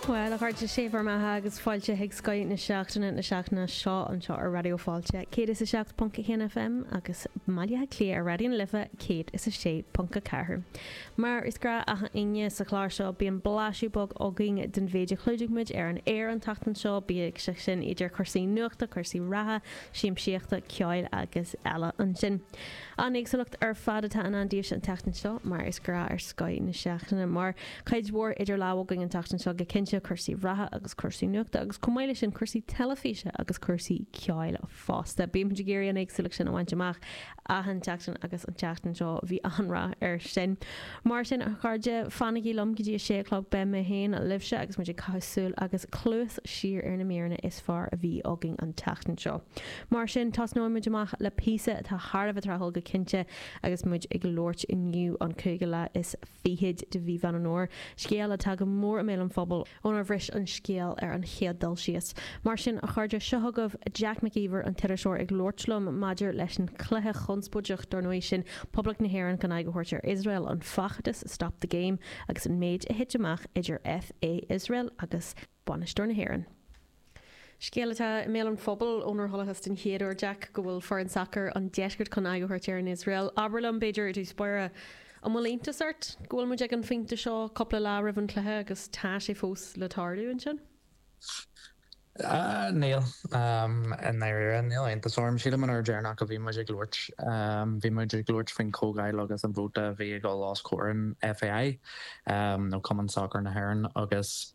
Bhuel, a chairde, sé bhur mbeatha agus fáilte chuig scoth na seachtaine na seachtaine seo anseo ar Raidió Fáilte 107.1 FM agus i mBaile Átha Cliath ar Raidió na Life 106.4. Mar is gnách achan Aoine sa chlár seo bíonn blaiseadh beag againn den mhéid a chlúdaigh muid ar an aer an tseachtain seo, bíodh sé sin idir cúrsaí nuachta, cúrsaí reatha, siamsaíochta, ceoil agus eile ansin. An éagsúlacht ar fad atá i ndán daoibhse an tseachtain seo, mar is gnách ar scoth na seachtaine. Mar cuid mhór idir lámha againn an tseachtain seo, go cinnte, cúrsaí reatha agus cúrsaí nuachta, agus chomh maith leis sin, cúrsaí teilifíse agus cúrsaí ceoil fosta. Bímid ag iarraidh an éagsúlacht sin a bhaint amach achan tseachtain agus an tseachtain seo bhí an-rath air sin. Mar sin, a chairde, fanaigí liom go dtí a sé a chlog. Beidh mé féin libhse agus muid ag caitheamh súil agus cluas siar ar na míreanna is fearr a bhí againn an tseachtain seo. Mar sin, tosnóidh muid amach le píosa atá thar a bheith tráthúil go cinnte agus muid ag labhairt inniu, an cúigiú lá is fichid de mhí Mheán Fómhair, scéal atá go mór i mbéal an phobail. ónar bhris an scéal ar an chéad dul síos. Mar sin, a chairde, seo chugaibh Jack Mac Íomhair an t-iriseoir ag labhairt liom maidir leis an chluiche chonspóideach, dár ndóigh, sin Poblacht na hÉireann chun aghaidh a thabhairt ar Iosrael, an feachtas Stop the Game agus an méid a thit amach idir FA Iosrael agus bainisteoir na hÉireann. Scéal atá i mbéal an phobail ónar chualathas den chéad uair, Jack, go bhfuil foireann sacair an deiscirt chun aghaidh a thabhairt ar an Iosrael. Abair liom, b'fhéidir, i dtús báire, an bhfuil iontas ort go bhfuil muid ag an phointe seo, cúpla lá roimh an chluiche, agus tá sé fós le tarlú ansin? Níl, i ndáiríre. Níl iontas orm. Sílim an uair deireanach a bhí muid ag labhairt, bhí muid ag labhairt faoin chomhdháil agus an vóta a bhí ag dul os comhair an FAI, nó Cumann Sacair na hÉireann, agus,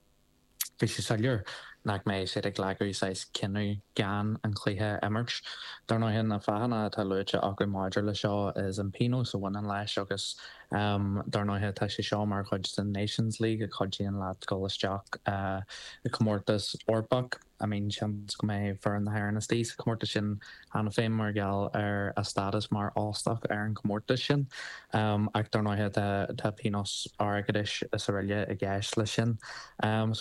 Bhí sé soiléir nach mbeidh siad ag glacadh saghas cinneadh gan an cluiche a imirt. Dar ndóighe, na fáthanna atá luaite acu maidir le seo is an pionós a bhaineann leis agus dar ndóighe tá sé seo mar chuid den Nations League a chuidíonn leat dul isteach i comórtas Eorpach. I mean seans go mbeidh foireann na hÉireann istigh sa chomórtas sin cheana féin mar gheall ar a stádas mar óstach ar an chomórtas sin ach dar ndóighe tá pionós airgeadais is araile i gceist leis sin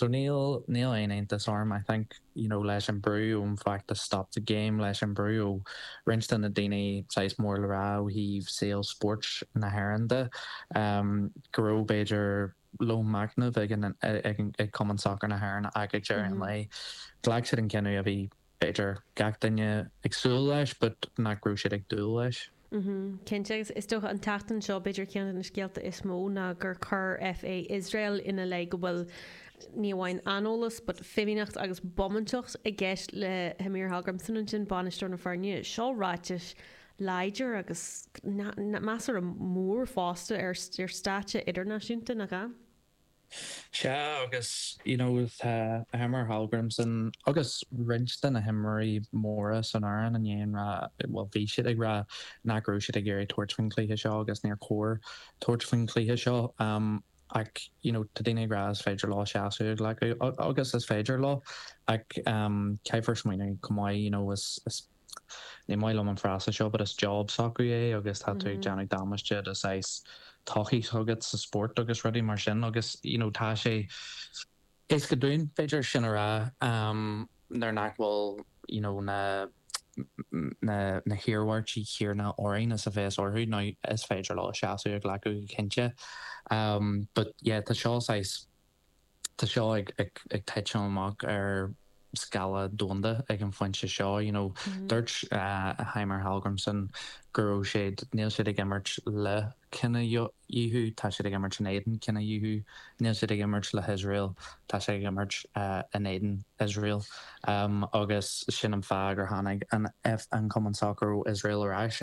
so níl níl aon iontas orm I think you know leis an brú ón bhfeachtas Stop the Game leis an brú ó roinnt de na daoine saghas mór le rá ó thaobh saol spóirt na hÉireann de go raibh b'fhéidir lón machnaimh ag Cumann Sacar na hÉireann ach ag deireadh an lae ghlac siad an cinneadh a bhí b'fhéidir gach duine ag súil leis but nach raibh siad ag dúil leis. Cinnte, agus is dócha an tseachtain seo b'fhéidir ceann de na scéalta is mó ná gur chuir FA Iosrael ina leith go bhfuil ní amháin aineolas but fimíneacht agus bómántacht i gceist le Heimir Hallgrímsson ansin, bainisteoir na foirne. Seo ráiteas láidir agus measartha mór fosta ar stáitse idirnáisiúnta, nach ea? Sea, agus you know tá Heimir Hallgrímsson agus roinnt de na himreoirí móra san fhoireann i ndiaidh a rá, bhuel, bhí siad ag rá nach raibh siad ag iarraidh tabhairt faoin chluiche seo agus níor chóir tabhairt faoin chluiche seo ach you know tá daoine ag rá is féidir leo seasamh a ghlacadh agus is féidir leo ach caithfear smaoineamh chomh maith you know is ní maith liom an frása seo but is job s'acu é agus tá tú ag déanamh damáiste do shaghas todhchaí s'agat sa spórt agus rudaí mar sin agus you know tá sé éasca dúinn b'fhéidir sin a rá nuair nach bhfuil you know na na na hiarmhairtí céanna orainn is a bheas orthu now is féidir leo seasamh a ghlacadh go cinnte but yeah tá seo saghas Tá seo ag titim amach ar scála domhanda ag an phointe seo, you know. Dúirt Heimir Hallgrímsson go raibh siad, níl siad ag imirt le cinedhíothú, tá siad ag imirt in éadan cinedhíothú. Níl siad ag imirt le hIosrael, tá siad ag imirt in éadan Iosrael. Agus sin an fáth gur tháinig an Cumann Sacair ó Iosrael ar ais.